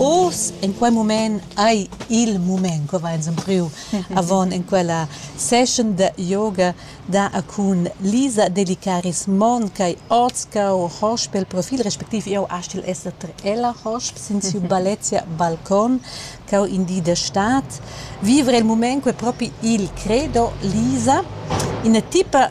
Oz in quei mument ei il mument che va ins empriu avon en quella session da yoga da a cun Lisa Delicaris Mon ch'ei oz cau hosp pel profil respectiv jeu astgel esser tra ella hosp sin siu Balezia Balcon cau in di da stad vivere il mument quei propi il credo Lisa ina tipa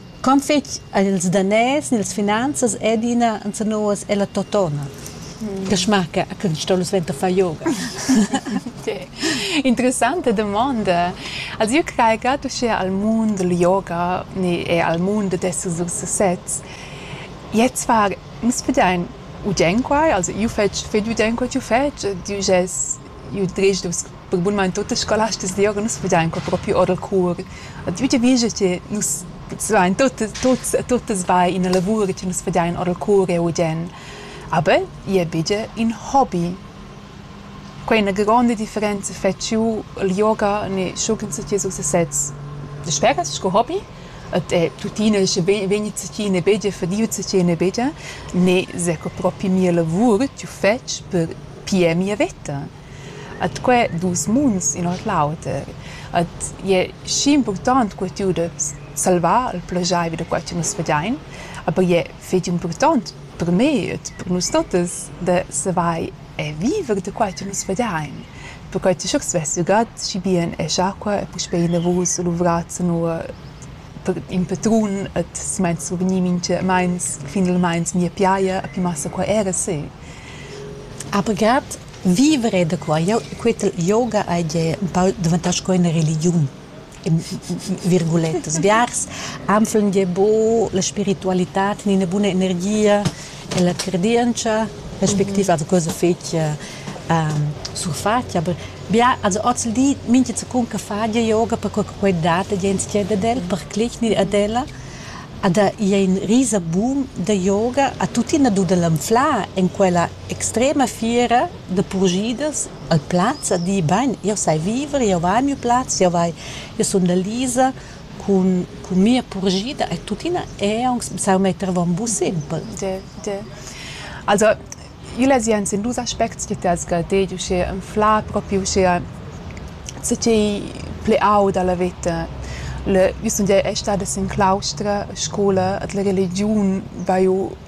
Quant fetg han ils daners ni las finanzas adina enzanus ella totona che schmarca che nus ston suenter far yoga? Interessante domanda. Also io crei grad uschea al mund dal yoga ne e al mund d'esser sur sesez. Jetzt war nus pudain udain quai, also io fetsch fetg udain co ch'io fetsch, ed io gest io drej dus Perque bunmaing tuot ils scolastas da yoga nus vegian qua propi or dal cour. A tü giavischa che nus stuvain tuot tuots tuttas bain ina lavur che nus vegian or dal cour eu udiern. Aber i es be gia ün hobi. Quai ina gronda differenza fetsch jeu il yoga ne schugend che so sesez. Dasperas sco hobi? Ed è tuttina sche vegnit tschiene begia fadiu tschiene begia, ne s'è co propi mia lavur ch'jeu fetsch per pier mia veta. At quai duos munds in ord l'auter. At i es schi important co tü udast salvar il plaschair da quai chi nus vegiain, aber i è fich important per me ed per nus tottas da savair e viver da quai chi nus vegiain, perquai chi sch'el svess ügat schi bien es acua e puspei inavous luvrats inua per in patrun at simaint survgnì minchamaints finalmaing mia piaja e pi massa qua era se. Aber grad Vivere da qua. Jau quetel yoga hai gie baul daventà sco ina religiun in virgulettas. Biars anflan gie buc la spiritualitad ni ina buna energia e la cardientscha respectiva da cosa fetg surfatg. Aber bia also oz il di mintga secunda fa gie yoga perquei che quei dat gie entschiet ad el, per clicni ad ella. Ed ei in risa bun da yoga, ha tuttina dud el anflar en quella extrema fiera da purschidas al plaz a di bain jeu sai viver jeu vai a miu plaz jeu vai jeu sun da Lisa cun cun mia purschida e tuttina è aunc sau metter avon bus simpel. De de. Also igl ei sien sin dus aspects che ti has guardei uschè anflar propi uschè ce ch'ei pli aud alla veta. Le, io sun gia è stada sin claustra, scola, ed la religiun va ju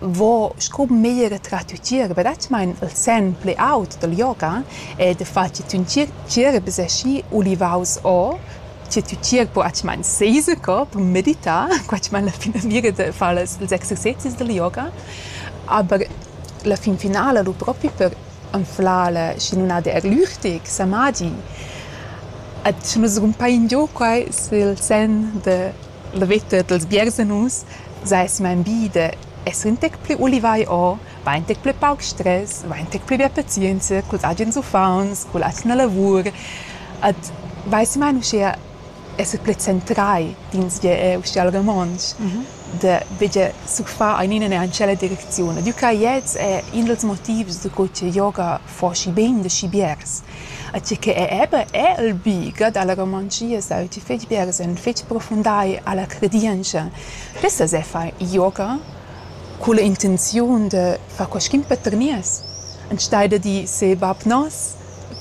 vo scu meglier trat ü tgierp radschmaing il sen plü aut dal yoga ed fat chi tün tgierp es aschi ulivaus o chi tü tgierp po radschmaing seser co per meditar qua dschmain la finamira da far las ils exercezis dal yoga aber la fin finala lu propi per anflar la schi nun ha der lüchtig samadi. Ed schi nu s'rumpa ingio quai s'il sen da La veta dals biersenus s'ais smanvida, esser ün tec plü ulivai o va ün tec plü pauc stres, va ün tec plü be pazienza culs agens uffants, culla atgna lavur ed vaissimane uschea esser plü centrai d'insgè eau uschea al romontsch, da vegger surfar aint in üna tschella direcziun. Ed eu craj ets è in dals motivs daco cha yoga foschi bein da schi biars. E tgi che è eben è il bieger dalla Romangia sa ti fetg biars en fetg profundai alla credientscha. Pessa se far yoga culla intenziun de far quaschin paternies. Enstei da di se bab nos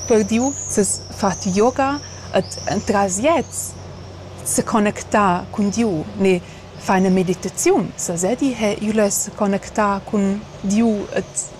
per diu ses fat yoga et entras jet se connectar cun Diu, ne far eine Meditaziun. Sa se di he iu less connectar cun Diu et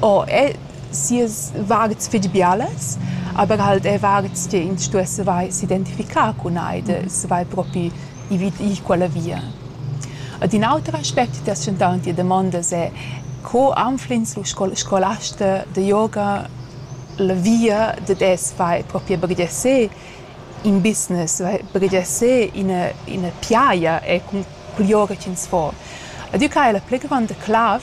Oh, el, sias varts fetg bialas, aber halt è varts che ins stuess savair s'identificar cun ei de savair propi ir vid ir quella via. Ed in auter aspect ti has tschentau en tia damonda è co anfl'ins lu scol- scolasta de yoga la via dad es savair propi bringiar seh in business, savair bringiar seh ina ina piaia e cun cul yoga ch'ins fa. Ed jeu craj la pli gronda clav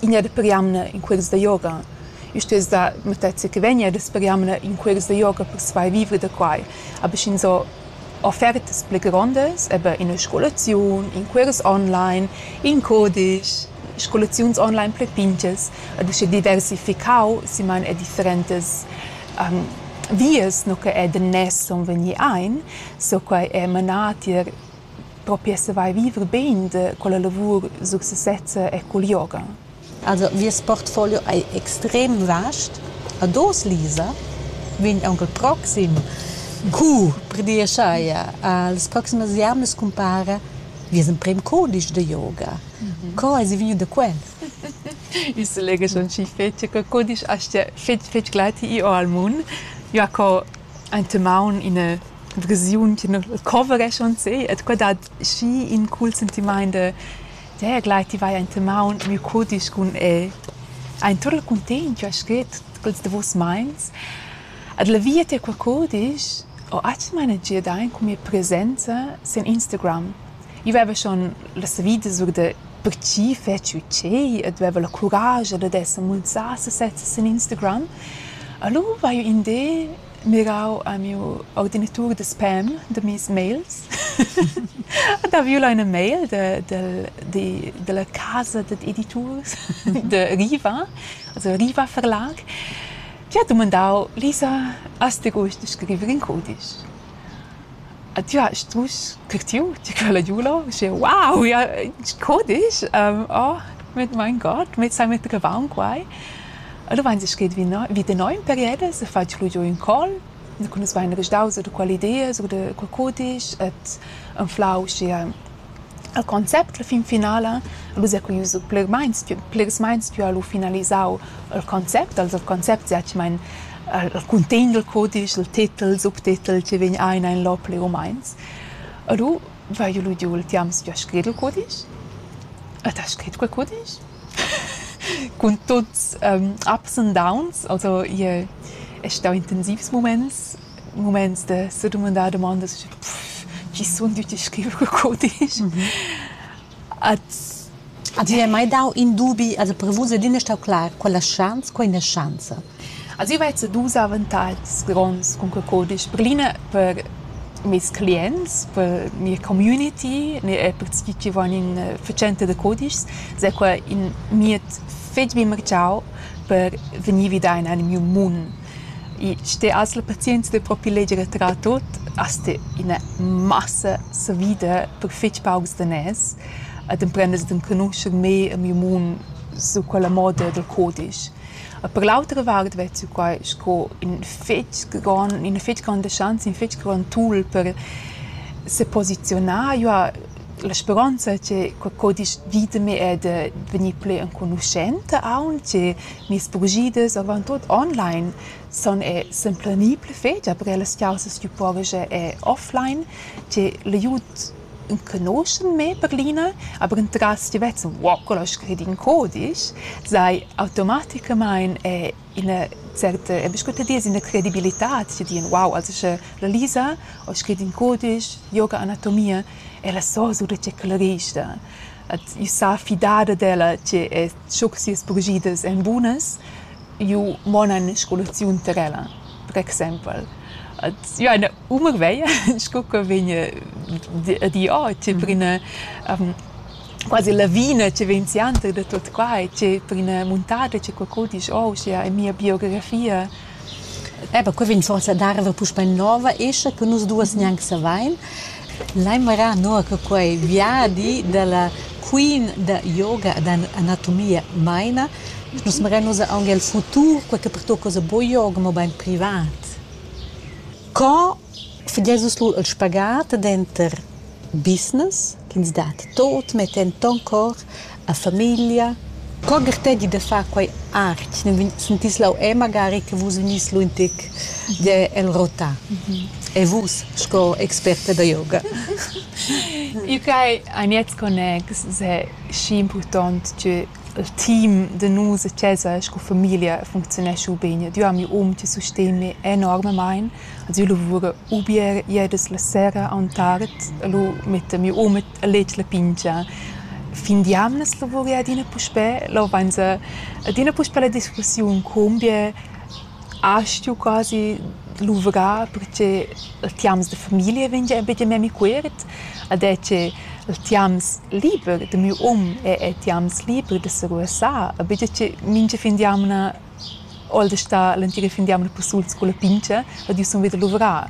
Ina per jamna in cuors da yoga. Eu stess da mattezza che vegn e daspö jamna in cuors da yoga per svair vivre da quai. Aber sch'ins ho offertas pli grondas, eben ina scolaziun, in cuors online, in cudisch, scolaziuns online pli pinchas ed usche diversificau siman e differentas vias no che è da nes sun vegni aint, so quai è manà tier propi savai viver bein da quella lavur successezza e cul yoga. Also vies portfolio ei extrem vast. Ad oz, Lisa, vegn aunc il proxim cours per dir scheia. Las proximas jamnas cumpara vies emprem cudisch da yoga. Co eis vegniu da quel? Il selega schon schi fetg che cudisch astga fetg fetg glati i al mun. Jaco Enta maun ina versiun ch'ina coverescha aunc seh ed quei dat schi in cool sentimaint da "Dea, gleit ti vai enta maun, miu cudisch cun el". Ein tut il cuntegn ch'ha scrit quels davos meins. Ed la via tier quei cudisch ho atgna energia dain cun mia presenza sin Instagram. Io veva schon la savida sur da per tgi fetschi tgei e dueva la curascha dad esser mulsà sesezza sin Instagram. Alura haiu in di mirau a miu ordinatur da spam da mes mails ed ha viu là ina mail da, dal, di, dalla casa dad editurs da Riva, also Riva Verlag, che ha dumandau, Lisa, has ti gust da scriver in cudisch? E tü hast strusch curtiu tü quella giula, uschè wow, ja co disch? Oh, mit mein Gott, mit sai metter che vaun quai. Alura vains scrit vi no, vi da no ün peried se faja lu giò ün col, cun as vaina resdaus or da quelle ideas, or da co disch, et anflau uschia El concept la fin finala el ussa cu ius plermeins plirs meins più ha lu finalisau il concept, also il concept setgamain il cuntegn dal cudisch, il titel, il subtitel chi vegn aina in lò plir u meins. E lu vaiu lu giu il temps più a scrir il cudisch. Ed ha scrit quel cudisch cun tuts ups and downs, also ie es stau intensivs muments muments da sedumandar dumondas chi sun tüti scriver cul cudisch. At Ti hai mai dau in dubi, also per vus è l'ina stau clar, quella schanza, quella schanza. Also io vezzo dus avantatgs gronds cun quel cudisch. Per l'ina per meis clients, per mia community, e per tgi chi van in fatschenta da cudischs, s'è quai in mied fetg bien marchau per vegnir vida in anim miu mund. I ste asl pazienza da propi leger e trar tut, as sta ina massa savida per fetg paucs daners ed emprendas d'enconuscher mei e miu mund sur quella moda dal codisch. E per l'autra vart vezzu quai sco in fetg grond, ina fetg gronda schanza, in fetg grond tool per seposiziunar. Jeu ha la speronza che quei codisch vid me è da vegnir pli enconuschenta aunc, che Mias bugidas avon tut online sun er s'implanì pli fetg, aber ellas chaussas tü povas er er offline, tg'e l'aiud enconuschen me per l'ina, aber entras ti vezzan wow, quello ha scrit in codisch, sai automaticamaing er ina certa, e bist gut a dir, ina credibilità tü dien wow, also sche la Lisa ha scrit in codisch yoga anatomia, ella so sulet tge clerista, et io sa fidada d'ella tg'e es sco che sias purschiders èn bunas, ju monan scolaziun tar ella, per exempel. Et jo ina umur veglia sco che vegn a dir oh tge per ina quasi lavina che vegn sianter da tut quai, tge per ina muntada che qualcuno dice oh uschia è mia biografia. Eh bah, quei vegn forsa a dar era puspei nova escha che nus duas gnanc savein. Lai marar nua che quei viadi dalla queen da yoga ed anatomia meina. Nus marein ussa aunc el futur, quei che pertucca ussa buca yoga, mobein privat. Co Fageis vus lur il spagat denter business ch'ins dat tot, mettend ton cor a famiglia? Co gartegi da far quei art? Ne sentis leu è magari che vus vegnis lu in tec de el rotar? E vus sco experta da yoga? Il quai ein jetzt connex se schi impurtont che Il team da nus a chasa sco famiglia funcziunescha ubain. Ed io am miu um chi susteni enormamaing. Als io lavura u bger ieras la sera aunch'art. El ho metta miu um a leger la pingia. Fin d'jamnas lavura ella adina puspè. Là vainsa adina puspè la discussiun co bger A stiu quasi luvrar perche il tiams da famiglia vegn gia bia memia quiet ed è che il tiams liber da miu um è er tiams liber da seruessar e bia che mincha fin d'jamna ho el da star l'entira fin d'jamna persuls culla pintscha ed io sun vi da luvrar.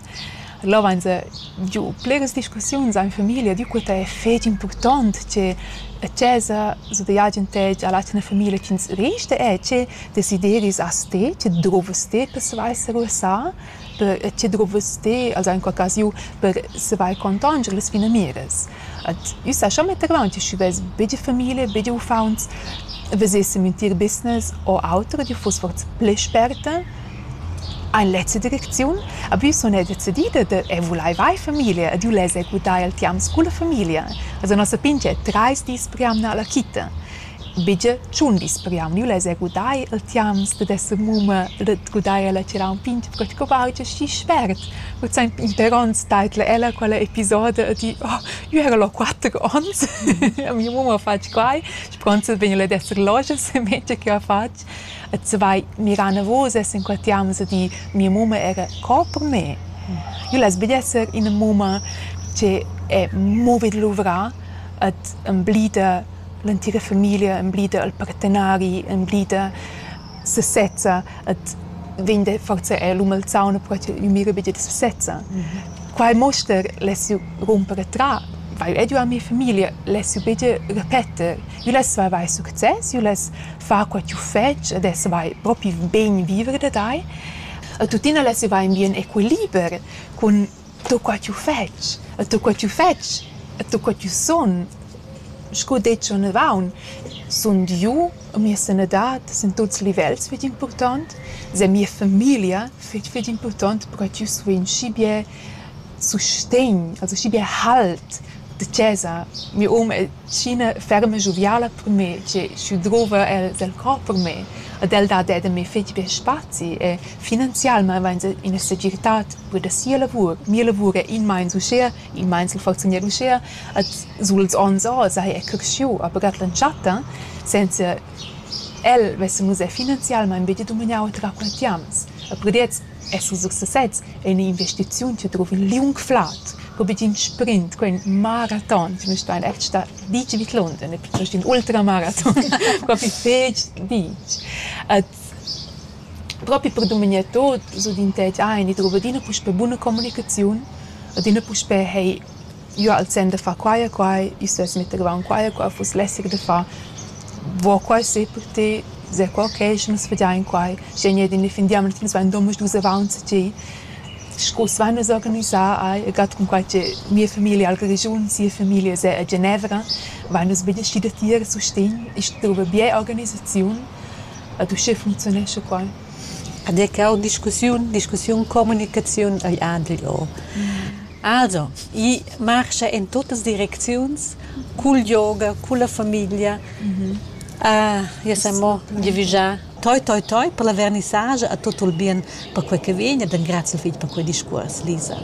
Là vainsa giu bleras discussiuns amo in famiglia, adüna quai è fich impurtant che a chesa s'ho da gnir giantegi a l'atgna famiglia chi'ns resta è che desideris as te, che drouvas te per savair savair per che drouvas te als ais in qualchasiu per savair contanger las finamiras. Ad üsa scha mettevaunt che sch'i vess be giü famiglia, be giü uffauns, vesessem in tier business o auter, ad üna fuss forsa plü sperta Ein lezza direcziun ha viu suner decidida da «Eu vulaiva eir famiglia ed eu less executar il tiams culla famiglia». Esa nossa pingia trais dis per jamna alla quita. Buca tschun dis per jamna. Eu less executar il tiams dad esser mumma, dad gudair ella tgirà ün pingia, perque co vaja schi spert. Cul saint Peter ons taidla ella quella episoda e di «Oh, eu era là quatter ons, a mia mumma ha fatg quai, spronza vegn ella ad esser lojas e mezza che ha fatg». Et se vai mirar navos e s'inquatiamus a dir mia mumma era co per me. Io less be esser ina mumma che è movid luvrà et emblida l'entira famiglia, emblida il partenari, emblida sesezza et vegn da forsa er l'um al sauna però che io mira be da sesezza. Quai muoster less io rumper attra, vai ed io a mia famiglia, less io be da repeter. Jeu less avair success, jeu less far quei ch'jeu fetsch ed ess avair propi bein viver da tai. E tuttina less jeu avair in bien equiliber cun tut quei ch'jeu fetsch, e tut quei ch'jeu fetsch e tut quei ch'jeu sun. Sco detg onavant, sund jeu e mia sanadad sin tuts livels fetg impurtont, sia mia famiglia fetg fetg impurtont per che jeu survegni schi bia sustegn, also schi bia halt da chasa. Mia oma è scina ferma e gioviala per me, tgei sch'eu drova el el cor per me. Ad el dat er da me fetg bia spazi e finanzialmaing vainsa üna segirtad per da sia lavur. Mia lavur è in meins uschea, in meins l'ho fatschendieu uschea. Ad suls ons ò saja er creschieu, aber ad l'entschatta senza el vessamus er finanzialmaing be da dumagnar oter raquintiants. E per gliez E sut success ei in'investiziun che drova in liung flad, pro buc in sprint, quei maraton che nus stuein eir star ditg vidlond, e piuttost in ultramaraton, propi fetg ditg. Et propi per dumignar tot, sut in tec ein, i drova adina puspei buna communicaziun, adina puspei hei jeu al sem da far quai e quai, io stuess metter gavaunt quai e quai, fuss lässig da far. Vo quai si per ti, se quei occasion nus vedein quai. Sch'ei gnit indefinitivamaing nus vain duos dus avaunt a ti. Scu s'vain nus organisà ai e gat cunquai che mia familia ha la ragiun, sia familia es a Genevra, vain nus be desci da tir a sustegn e stuva bger organisaziun ad uschè funziunescha quai. Ed è que ho discussiun, discussiun, communicaziun ei Andri o. Also, i marscha in tuttas direcziuns cul yoga, culla famiglia. Ja sun mo giavüschà toi, toi, toi per la vernissage e tut il bien per quai che vegn ed ingrazio il figl per quei discuors, Lisa.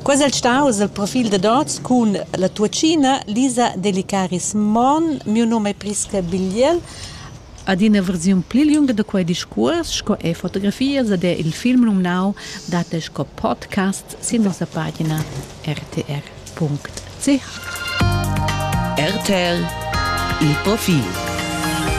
Quai es el staus il profil dad hoz cun la tuoccina Lisa Delicaris Mon. Miu nom è Priska Bigliel ad ina versiun pli lunga da quei discuors sco ei fotografias ed er il film numnau dat el sco podcast sin nossa pagina rtr.ch. RTL il profil